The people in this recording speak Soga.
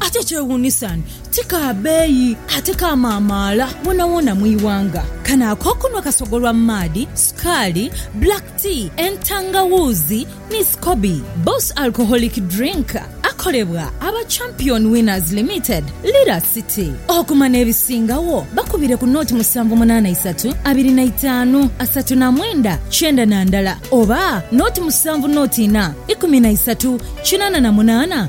Ate ekyewuunisa ni ti ka beeyi ate kaamaamaala woonawoona mu ighanga. Kano ak'okunhwa kasogolwa mu maadhi, sukaali, black tea, entangawuuzi ni scoby. Boss Alcoholic Drink akolebwa aba Champion Winners Limited, Lira City. Okuma n'ebisingagho bakubire ku nooti musanvu munaana isatu abiri na itaanu asatu na mwenda kyenda na ndala oba nooti musanvu nooti ina ikumi na isatu kinaana na munaana